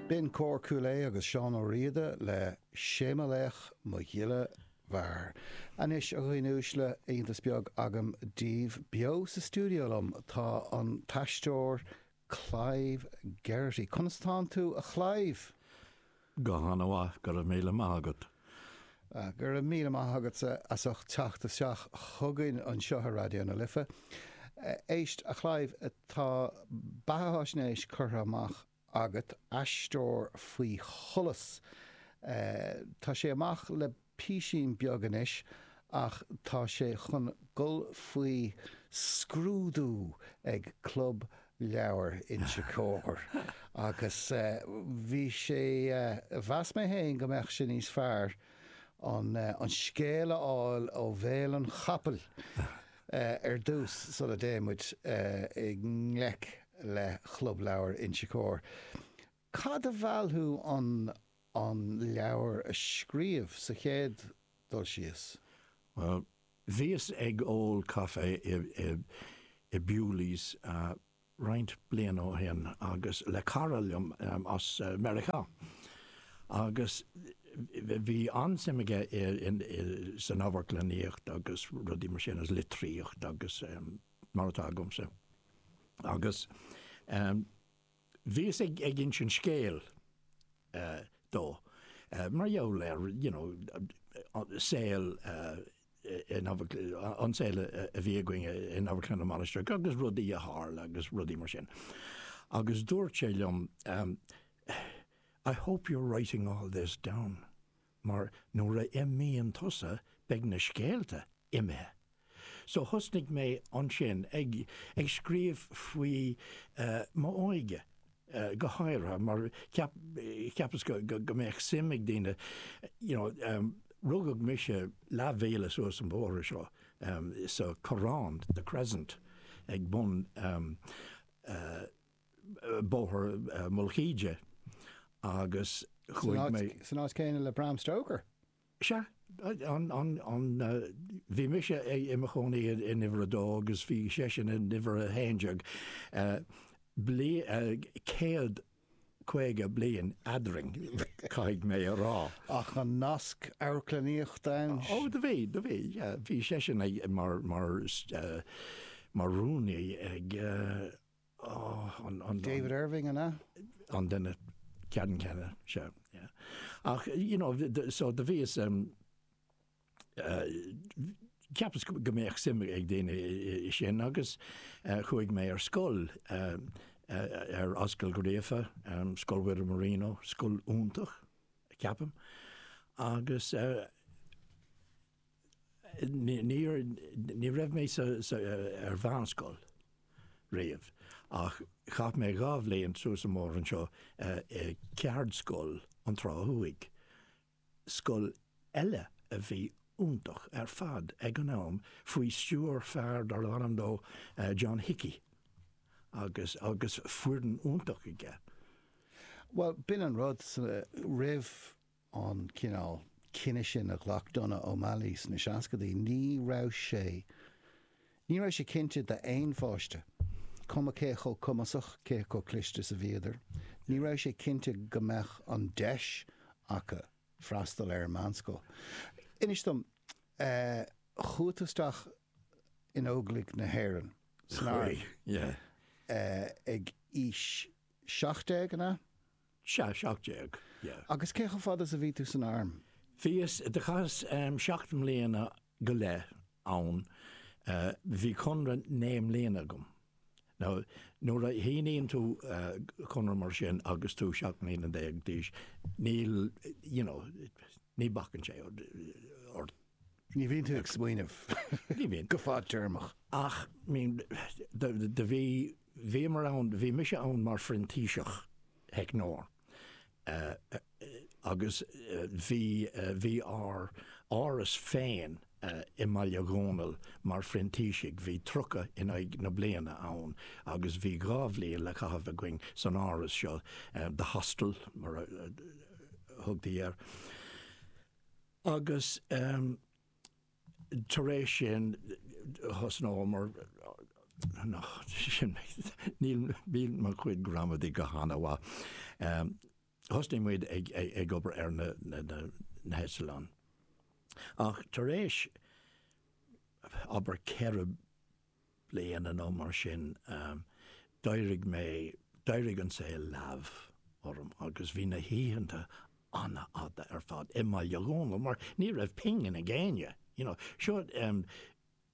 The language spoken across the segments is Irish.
Bhí ansin Cór Chúil Aodha agus Seán Ó Riada le 'Sé mo Laoch mo Ghile Mhear'. Anois a dhaoine uaisle, iontas beag agam daoibh. Beo sa stiúideo liom tá an t-aisteoir Clive Geraghty. Conas atánn tú a Chlaive? Go han-mhaith, go raibh míle maith agat. Go raibh míle maith agatsa as ucht teacht isteach chugainn anseo ar Raidió na Life. Éist, a Chlive, tá beatháisnéis curtha amach agat, Aisteoir Faoi Sholas. Tá sé amach le písín beag anois ach tá sé chun dhul faoi scrúdú ag Club Leabhar Inse Chór agus mheas mé fhéin go mbeadh sé níos fearr an scéal a fháil ó bhéal an chapaill ar dtús sula dtéadh muid i ngleic le Chlub Leabhar Inse Chór. Cad a mheall thú an an leabhar a scríobh sa chéad dul síos? Bhuel, bhíos ag ól caife i Bewley's roinnt bliana ó shin agus le cara liom as Meiriceá agus bhí an-suim aige san amharclannaíocht agus rudaí mar sin agus litríocht agus mar atá agamsa agus Bhíos ag insint scéil dó mar gheall ar you know saol in an saol a bhí againn in Amharclann na Mainistreach agus rudaí a tharla agus rudaí mar sin. Agus dúirt sé liom, I hope you're writing all this down. mar nuair a imíonn tusa beidh na scéalta imithe. So thosnaigh mé ansin ag scríobh faoi m'óige go háirithe mar cheapas go mbeadh suim ag daoine you know rugadh mise leathmhíle suas an bóthar seo sa Corrán, the Crescent, ag bun Bóthar Mhullach Íde agus chuaigh mé. San áit céanna le Bram Stoker? Sea. Bhí mise i mo chónaí in uimhir a dó agus bhí seisean in uimhir a haon déag. Céad caoga bliain eadrainn, caithfidh mé a rá. Ach an nasc amharclannaíochta ann? Ó, do bhí, do bhí. Bhí seisean mar rúnaí ag. David Irving an ea? an duine ceannann céanna seo. Ach you know so do bhíos cheapas go mbeadh suim ag daoine i sin agus chuaigh mé ar scoil ar Ascaill Uí Ghríofa, Scoil Mhuire Marino, scoil iontach ceapaim agus Níor, ní raibh mé sa, sa, ar mheánscoil riamh ach chaith mé dhá bhliain suas an bóthar anseo i Ceardscoil na Trá Thuaidh, scoil eile a bhí iontach ar fad ag an am faoi stiúir fear darb ainm dó John Hickey agus, agus foireann iontach aige. Bhuel, b'in an rud, roimh an cineál cinneadh sin a ghlac Donogh O'Malley sna seascadaí, ní raibh sé ní raibh sé cinnte d'aon pháiste, cuma cé chomh cumasach, cé chomh cliste is a bhíodar, ní raibh sé cinnte go mbeadh an deis acu freastal ar an meánscoil. Inis dom, chuaigh tú isteach in Óglaigh na hÉireann, san arm, ag aois seacht déag, an ea? Sea, seacht déag, ya. Agus cé chomh fada is a bhí tú san arm? Bhíos, do chaitheas seacht mbliana go leith ann. Bhí conradh naoi mbliana agam. Now, nuair a shíníonn tú conradh mar sin agus tú seacht mbliana déag d'aois, níl, you know, ní bacann sé ort. Ní bhíonn tú ag smaoineamh go fad-téarmach. Ach, I mean, do bhí. Bhíomar ann, bhí mise ann mar phrintíseach theicneoir agus bhí, bhí ár áras féin i mBaile Dhónaill mar phrintísigh, bhí tríocha in aghaidh na bliana ann agus bhí dhá bhliain le caitheamh againn san áras seo, the hostel mar a thugtaí air agus. tar éis sin thosnaíomar, nach, sin, níl, níl mo chuid gramadaí go han-mhaith. Thosnaigh muid ag, ag obair ar na, na, na, na heitleáin. Ach tar éis, abair ceithre bliana nó mar sin, d'éirigh mé, d'éirigh an saol leamh orm agus bhí na hoícheanta an-fhada ar fad i mBaile Dhónaill mar ní raibh pingin ag éinne, you know. Seo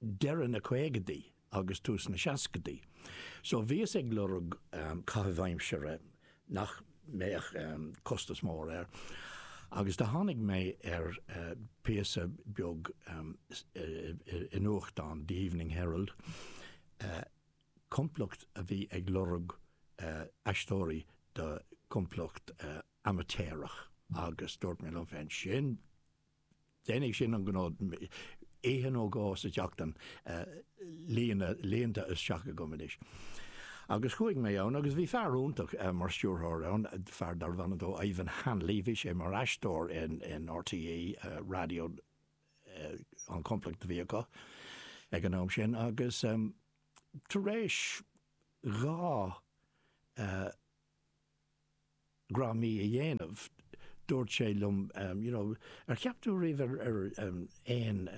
deireadh na caogadaí agus tús na seascadaí. So bhíos ag lorg caitheamh aimsire nach mbeadh costas mór air agus do tháinig mé ar phíosa beag i nuachtán, The Evening Herald, complacht a bhí ag lorg aisteoirí do chomplacht amaitéarach agus dúirt mé liom féin, sin Déanfaidh sin an gnó. Oíche nó dhó sa tseachtain líonta isteach agam anois. Agus chuaigh mé ann agus bhí fear iontach mar stiúrthóir ann, fear darbh ainm dó Ivan Hanley, bhí sé mar aisteoir in RTÉ Raidió an chomplacht a bhí acu ag an am sin agus tar éis dhá dhráma a dhéanamh, dúirt sé liom you know ar cheap tú riamh ar aon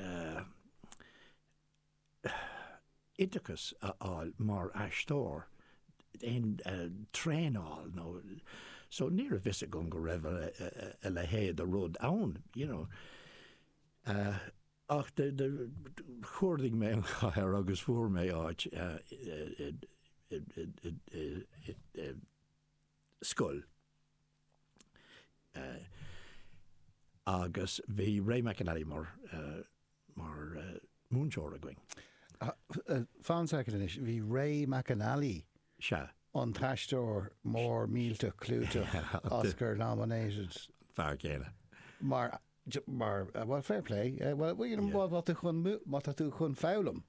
oideachas a fháil mar aisteoir, aon traenáil a fháil nó so ní raibh fhios agam go raibh a leithéid de rud ann you know. Ach chuardaigh mé an chathair agus fuair mé áit i scoil. Agus bhí Ray McAnally mar múinteoir againn. Fan a second anois, bhí Ray McAnally sea an t-aisteoir mór millteach clúiteach Oscar nominated. Fear céanna. Mar mar bhuel fair play well you know má tá tú chun má tá tú chun foghlaim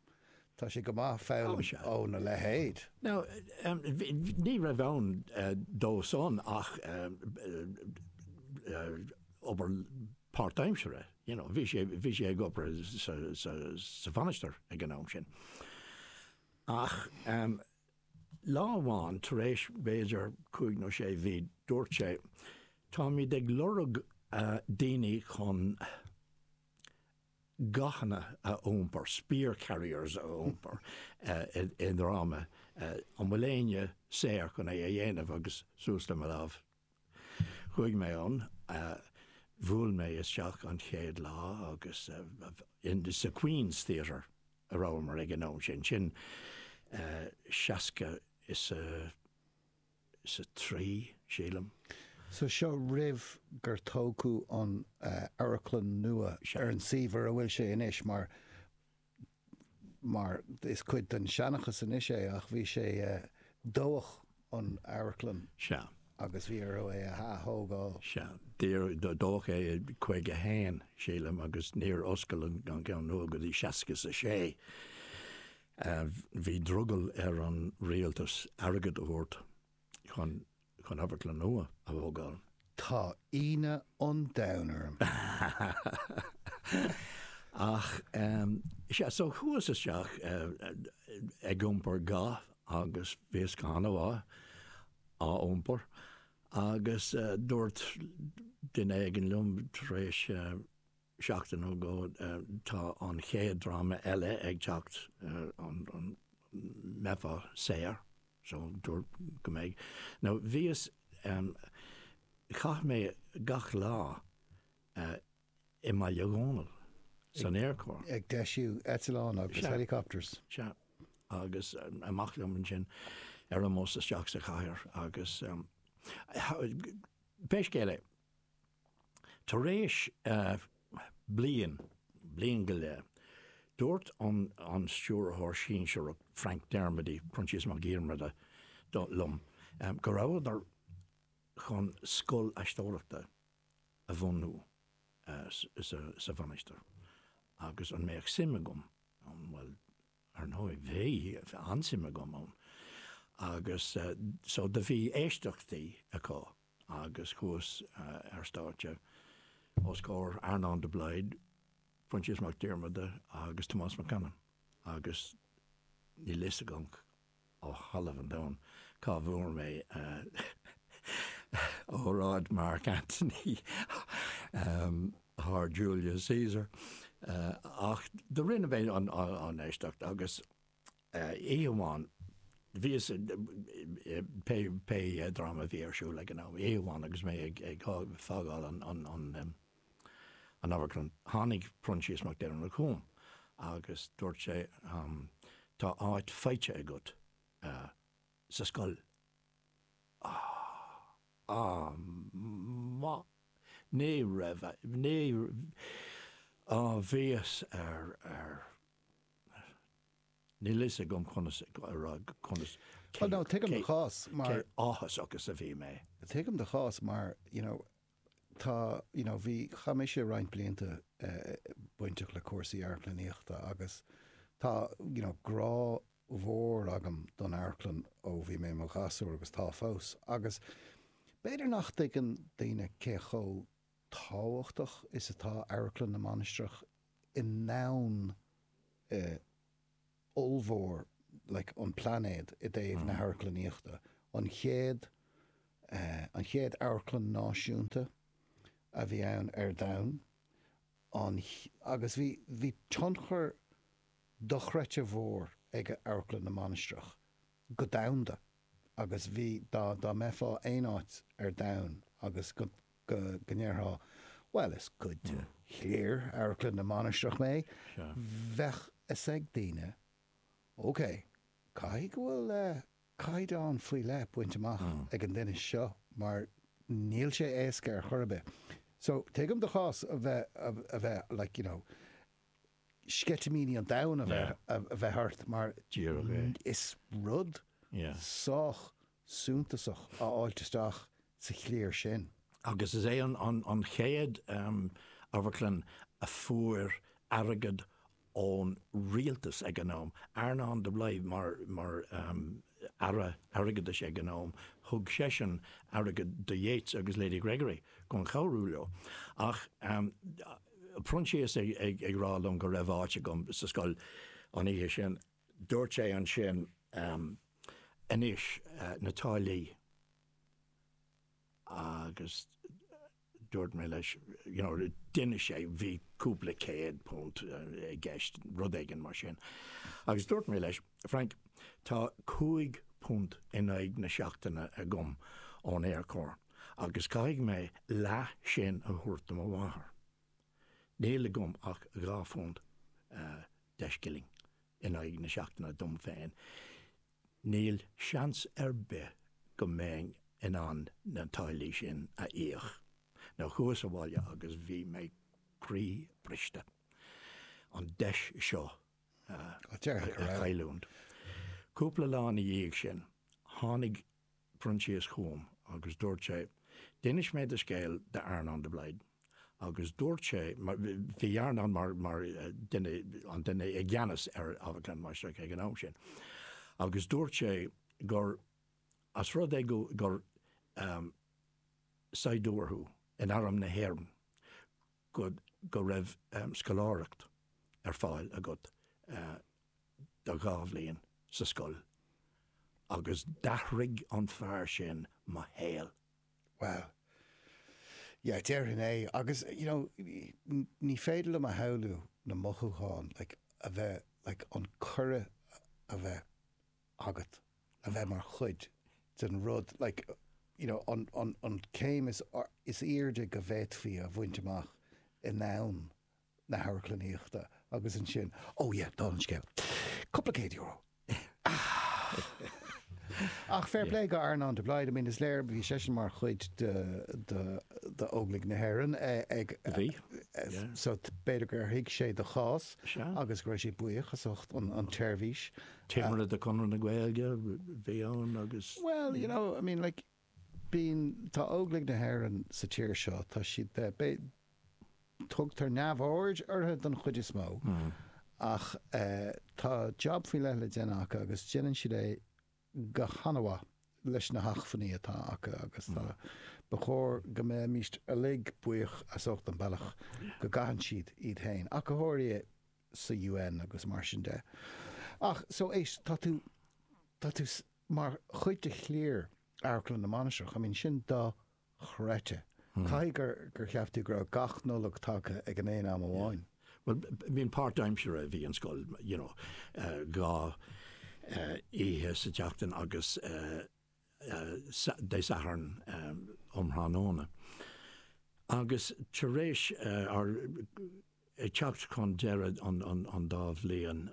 tá sé go maith foghlaim óna leithéid. Now ní raibh ann dó san ach obair páirtaimseartha you know bhí sé bhí sé ag obair sa sa sa Mhainistir ag an am sin ach Lá amháin tar éis b'fhéidir cúig nó sé mhí dúirt sé, Táimid ag lorg daoine chun gathanna a iompar, spear carriers a iompar i ndráma, an bhfuil éinne saor chun é a dhéanamh agus suas le mo lámh Chuaigh mé ann, bhuail mé isteach an chéad lá agus sa Queen's Theatre a rabhamar ag an am sin, sin seasca is a, is a trí, sílim. So seo roimh gur tógadh an amharclann nua ar an suíomh a bhfuil sé anois mar. mar is cuid den seanchas anois é, ach bhí sé dódh an amharclann Sea. agus bhí orthu é a ath-thógáil. Sea. Dódh é i 51, sílim, agus níor oscail an ceann nua go dtí seasca is a sé. Bhí drogall ar an rialtas airgead a thabhairt. chun amharclann nua a thógáil. Tá ionadh an domhain orm. Ach sea, so chuas isteach ag iompar ga agus bhíos go han-mhaith á iompar agus dúirt duine éigin liom tar éis. seachtain nó dhó tá an chéad dráma eile ag teacht an mbeifeá saor so dúrt go mbeidh nó bhíos chaith mé gach lá i mBaile Dhónaill san Aerchór. ag deisiú eitleán agus Sea. helicopters. Sea. Agus amach liom ansin ar omós isteach sa chathair agus beidh scéal é. Tar éis bliain, bliain go leith, dúirt an Stiúrthóir Sinsearach, Frank Dermody, Proinsias Mac Diarmada, liom go rabhadar chun scoil aisteoireachta a bhunú sa Mhainistir agus an mbeadh suim agam ann. Bhuel. Ar ndóigh bhí, bhí an-suim agam ann agus so do bhí éisteachtaí acu agus chuas ar stáitse os comhair Earnán de Blaghd, Proinsias Mac Diarmada agus Tomás Mac Anna agus níl a fhios agam ó thalamh an domhain cá bhfuair mé óráid Mark Antony as Julius Caesar ach do rinne mé an éisteacht agus oíche amháin bhíos pé dráma a bhí ar siúl ag an am, oíche amháin agus mé ag fágáil an An amharclann. Tháinig Proinsias Mac Diarmada chugam agus dúirt sé, Tá áit faighte agat sa scoil. Bhíos ar. níl a fhios agam conas a rá conas. Bhuel, no, tuigim do chás mar. Cé áthasach is a bhí mé. Tuigim do chás mar, you know. tá, you know, bhí, chaith mise roinnt blianta bainteach le cúrsaí amharclannaíochta agus tá, you know, grá mhór agam don amharclann ó bhí mé i mo ghasúr agus tá fós agus b'fhéidir nach dtuigeann daoine cé chomh tábhachtach is atá Amharclann na Mainistreach i ndomhan eh, ollmhór like an phláinéid i dtaobh na hamharclannaíochta. An chéad eh an chéad amharclann náisiúnta a bhí ann ar domhan. An agus bhí bhí tionchar dochreidte mhór ag Amharclann na Mainistreach go domhanda agus bhí dá dá mbeifeá aon áit ar domhan agus go go ndéarfá, bhuel is cuid de chliar Amharclann na Mainistreach mé, bheadh fhios ag daoine, ok, caithfidh go bhfuil caighdeán faoi leith bainte amach ag an duine seo mar níl sé éasca ar chor ar bith. So, tuigim do chás a bheith, a bheith like, you know, sceitimíní an domhain a bheith ort mar dáiríre is rud sách suntasach a fháilt isteach sa chliar sin. Agus is é an chéad amharclann a fuair airgead ón rialtas ag an am. Earnán de Blaghd mar Aire Airgeadais ag an am, thug seisean airgead do Yeats agus Lady Gregory chun cabhrú leo. Ach Proinsias ag rá liom go raibh áit agam sa scoil an oíche sin. Dúirt sé ansin, Anois, na táillí. Agus dúirt mé leis, you know, d'inis sé, bhí cúpla céad punt i gceist, rud éigin mar sin. Agus dúirt mé leis, Frank, tá cúig phunt in aghaidh na seachtaine agam ón Aerchór agus caithfidh mé leath sin a thabhairt do mo mháthair. Níl agam ach dhá phunt deich scilling in aghaidh na seachtaine dom féin. Níl seans ar bith go mbeinn in ann na táillí sin a íoc so chuas abhaile agus bhí mé croíbhriste. an deis seo a chailliúint. Cúpla lá ina dhiaidh sin, tháinig Proinsias chugam agus dúirt sé, D'inis mé do scéal d'Earnán de Blaghd agus dúirt sé, bhí Earnán mar dhuine, an duine i gceannas ar Amharclann na Mainistreach ag an am sin, agus dúirt sé gur, as rud é gur saighdiúir thú in arm na hÉireann, go raibh scoláireacht ar fáil agat do dhá bhliain sa scoil agus d'athraigh an fear sin mo shaol. Bhuel. Yeah, déarfainn é. Agus, you know, ní féidir liom a shamhlú na mothúcháin, like, a bheith, like, an cuireadh a bheith agat a bheith mar chuid den rud, like, you know, an, an, an céim is, is airde go bhféadfaí a bhaint amach ann. na hamharclannaíochta agus ansin oh yeah dála an scéil cúpla céad euro ach fair play go Earnán de Blaghd I mean is léir go raibh seisean mar chuid de de Óglaigh na hÉireann ag a bhí yeah so b'fhéidir gur thuig sé do chás sea agus go raibh sé buíoch as ucht an tseirbhís. Timire de chuid Chonradh na Gaeilge bhí ann agus. Well you know I mean like I mean tá Óglaigh na hÉireann sa tír seo, tá siad, eh, bé, tugtar neamhaird orthu don chuid is mó ach, eh, tá jab faoi leith le déanamh acu agus déanann siad é go han-mhaith leis na hacmhainní atá acu agus tá, ba chóir go mbeimis uilig buíoch as ucht an bealach go gcaitheann siad iad féin, ach go háirithe sa UN agus mar sin de. Ach, so, éist, tá tú, tá tú, Mar chuid de chliar Amharclann na Mainistreach, I mean, sin dochreidte. Caithfidh gur, gur cheap tú go raibh gach Nollaig tagtha ag an aon am amháin? Bhuel, b'in páirtaimseartha a bhí an scoil, you know, dhá oíche sa tseachtain agus Dé Sathairn um thráthnóna. Agus tar éis ár, ag teacht chun deireadh an dá bhliain,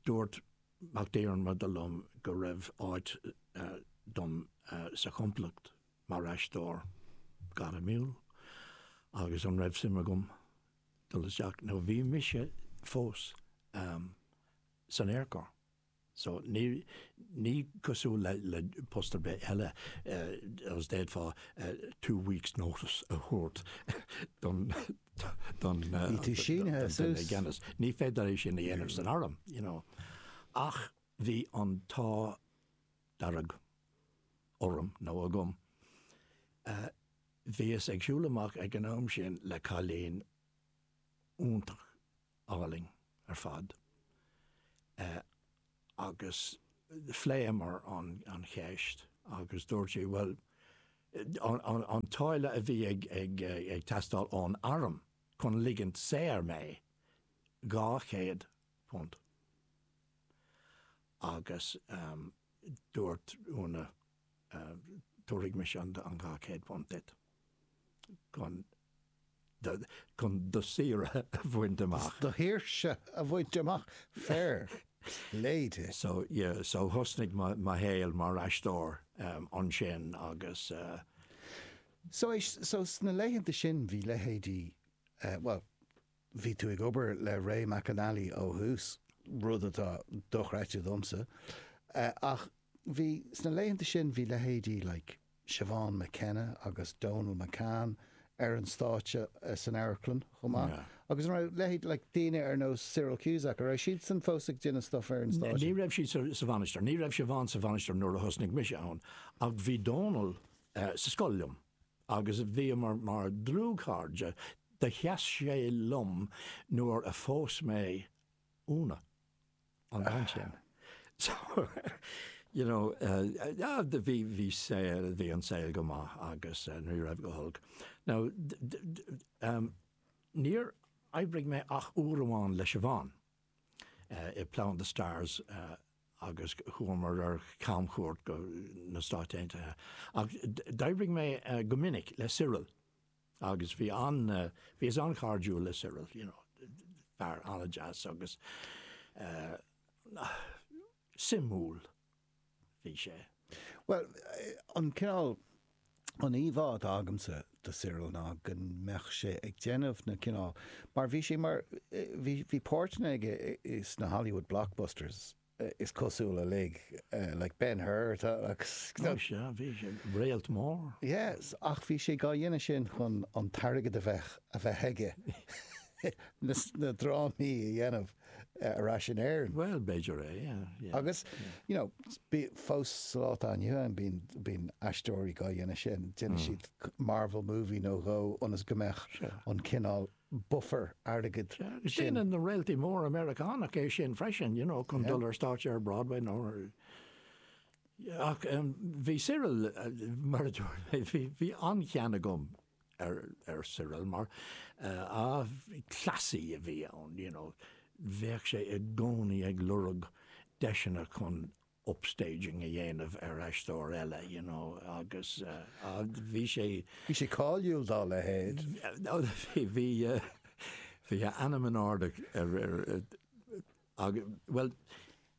Dúirt Mac Diarmada liom go raibh áit dom sa chomplacht mar aisteoir gairmiúil agus an raibh suim agam dul isteach nó bhí mise fós san Aerchór so ní cosúil le post ar bith eile d'fhéadfá two weeks notice a thabhairt don don duine i gceannas. Ní féidir é sin a dhéanamh san arm. Ach bhí an t-ádh dearg orm, nó agam. Bhíos ag siúl amach ag an am sin le cailín iontach álainn ar fad. agus phléamar an cheist agus dúirt sí bhuel an táille a bhí ag teastáil ón arm chun ligint saor mé dhá chéad punt agus dúirt Úna Tabharfaidh mise an dhá chéad phunt duit chun do shaoire a bhaint amach. Do shaoirse a bhaint amach? Fair play di. So thosnaigh mo shaol mar aisteoir ansin agus. So sna laethanta sin bhí leithéidí, bhuel, Bhí tú ag obair le Ray McAnally ó thús, rud atá dochreidte domsa, ach bhí, sna laethanta sin, bhí leithéidí like Siobhán McKenna agus Donal McCann ar an stáitse san amharclann chomh maith. Yeah. Agus an raibh leithéid like daoine ar nós Cyril Cusack, an raibh siadsan fós ag déanamh stuff ar an stáitse? Ní raibh siad sa, sa Mhainistir. Ní raibh Siobhán sa Mhainistir nuair a thosnaigh mise ann, ach bhí Donal uh, sa scoil liom. agus bhíomar mar dlúthchairde, do sheas sé liom nuair a phós mé Úna, an chéad bhean. So, you know, bhí saol, bhí an saol go maith agus ní raibh go holc. Now, níor oibrigh mé ach uair amháin le Siobhán. i Plough and the Stars agus chuamar ar camchuairt go na Stáit Aontaithe ach d'oibrigh mé go minic le Cyril agus bhí an, bhíos an-chairdiúil le Cyril you know, fear an-deas agus suimiúil. bhí sé. Bhuel, an cineál, an íomhá atá agamsa de Cyril ná go mbeadh sé ag déanamh na cineál, mar bhí sé mar, bhí, bhí páirteanna aige sna Hollywood blockbusters is cosúil uilig, like Ben Hur agus. Ó sea, bhí sé, réalt mór. Yes, ach bhí sé á dhéanamh sin chun an t-airgead a bheith, a bheith aige na drámaí a dhéanamh. ar ais in Éirinn. Bhuel, b'fhéidir é, yeah. Agus, you know, bíonn fós sa lá atá inniu ann, bíonn, bíonn aisteoirí á dhéanamh sin, déanann siad Marvel movie nó dhó ionas go mbeadh an cineál buffer airgid sin. Agus déanann na réaltaí móra Meiriceánacha é sin freisin, you know, chun dul ar stáitse ar Broadway nó ar, ach bhí Cyril, mar a dúirt mé, bhí an-chion agam. ar Cyril mar cleasaí a bhí ann, you know, bheadh sé i gcónaí ag lorg deiseanna chun upstaging a dhéanamh ar aisteoir eile, you know, agus bhí sé. Bhí sé cáiliúil dá leithéid. Bhí a ainm in airde ar, bhuel,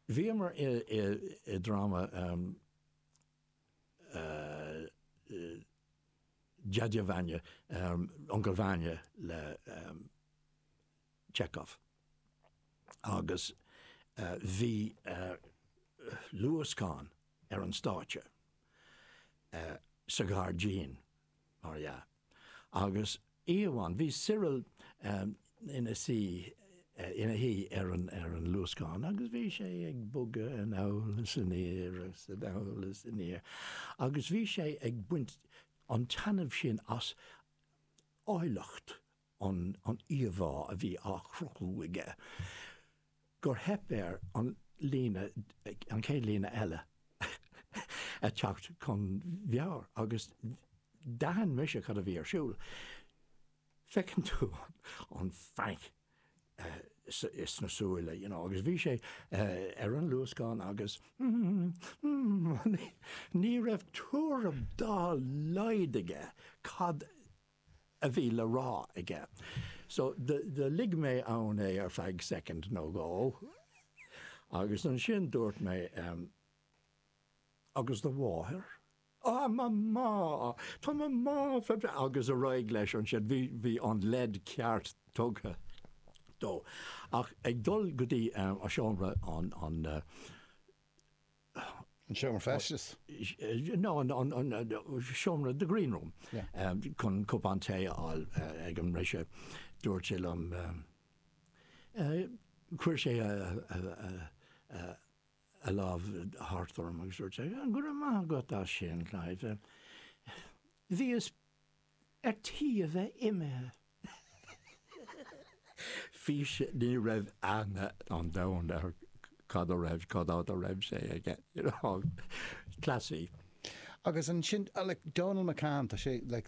bhíomar i dráma, Deaide Vanya, Uncail Vanya le Chekhov. Agus bhí luascán ar an stáitse sa ghairdín, mar dhea. Agus oíche amháin, bhí Cyril ina suí, ina shuí ar an luascán agus bhí sé ag bogadh anall is aniar agus anall is aniar agus bhí sé ag baint an-taitneamh sin as áilleacht an íomhá a bhí á chruthú aige gur theip air an líne, an chéad líne eile a theacht chun meabhair agus d'aithin mise cad a bhí ar siúl. Feiceann tú an phanic sna súile you know agus bhí sé ar an luascán agus ní raibh tuairim dá laghad aige cad a bhí le rá aige. So do lig mé ann é ar feadh soicind nó dhó agus ansin dúirt mé, Agus do mháthair? Á, mo mhá! Tá mo mhá fabhra-. Agus ar aghaidh leis ansin. Bhí an leid cheart tugtha dó. Ach ag dul go dtí seomra an seomra feistis, nó an seomra, the green room, chun cupán tae a fháil ag an mbriseadh. Dúirt sé liom, chuir sé a lámh thart orm agus dúirt sé, Go raibh maith agat as sin, Clive. Bhíos. ar tí a bheith imithe. Fiú ní raibh aithne an domhain air cad a raibh, cad fhad a raibh sé aige, you know, cleasaí. Agus ansin, like, Dónall McCann, tá sé, like,